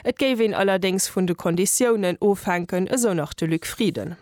Et géif een allerdéngs vun de Konditiounen ofhänken, esou nach de Luc Frieden.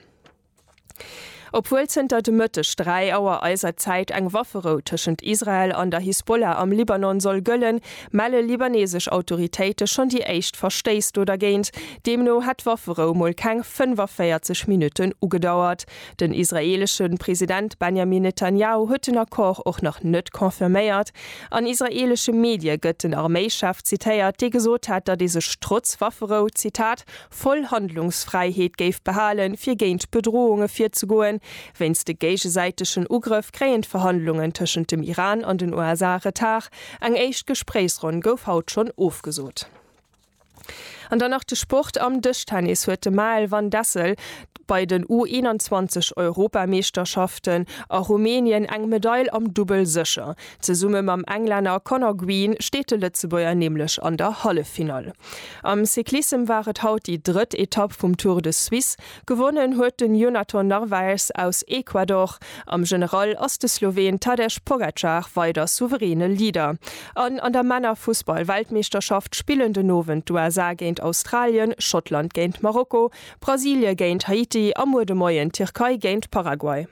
Obwuel zënter de Mëtteg dräi Auer eiser Zäit eng Wafferou tëschent Israel an der Hisbollah am Libanon soll gëllen, melle libanesesch Autoritéite schonn déi éischt Verstéiss do dergéint. Deemno hätt d'Wafferou mol keng 45 Minutten ugedauert. Den israeelesche President Benjamin Netanjahu huet den Accord och nach net confirméiert. An israeelesche Medie gëtt den Arméichef zitéiert, dee gesot hätt, datt ee sech trotz Wafferou, Zitat, voll Handlungsfräiheet géif behalen, fir géint Bedrohunge virzegoen. Wéinst de géigesäitegen Ugrëff kréien d'Verhandlungen tëschent dem Iran an den USA Retard. Eng éischt Gespréichsronn gouf haut schonn ofgesot. An dann nach de Sport, Am Dëschtennis huet de Mael van Dessel bei den U21 Europameeschterschaften a Rumänien eng Medail am Dubbel sécher. Zesumme mam Englänner Conor Green steet de Lëtzebuerger nämlech an der Halleffinall. Am Cyclissem war et haut déi drëtt Etapp vum Tour de Suisse. Gewonnen huet den Jonathan Narvaez aus Ecuador. Am General ass de Sloween Tadej Pogacar weider souveräne Leader. An an der Männerfussball-Weltmeeschterschaft spillen den Owend d'USA géint Australien, Schottland géint Marokko, Brasilie géint Haiti a muer de Moien d'Tierkei géint Paraguay.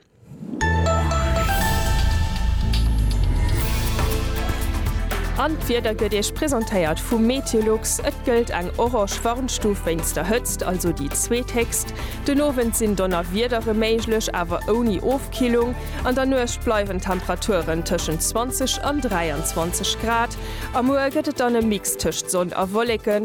An d'Wieder gëtt Iech presentéiert vu Meteolux. Et gëllt eng orange Warnstuf wéinst der Hëtzt, also déi zweethéchst. Den Owend sinn Donnerwiedere méiglech, awer ouni Ofkillung. An der Nuecht bleiwen d'Temperaturen tëschent 20 an 23 Grad. A muer gëtt et dann e Mix tëscht Sonn a Wolleken,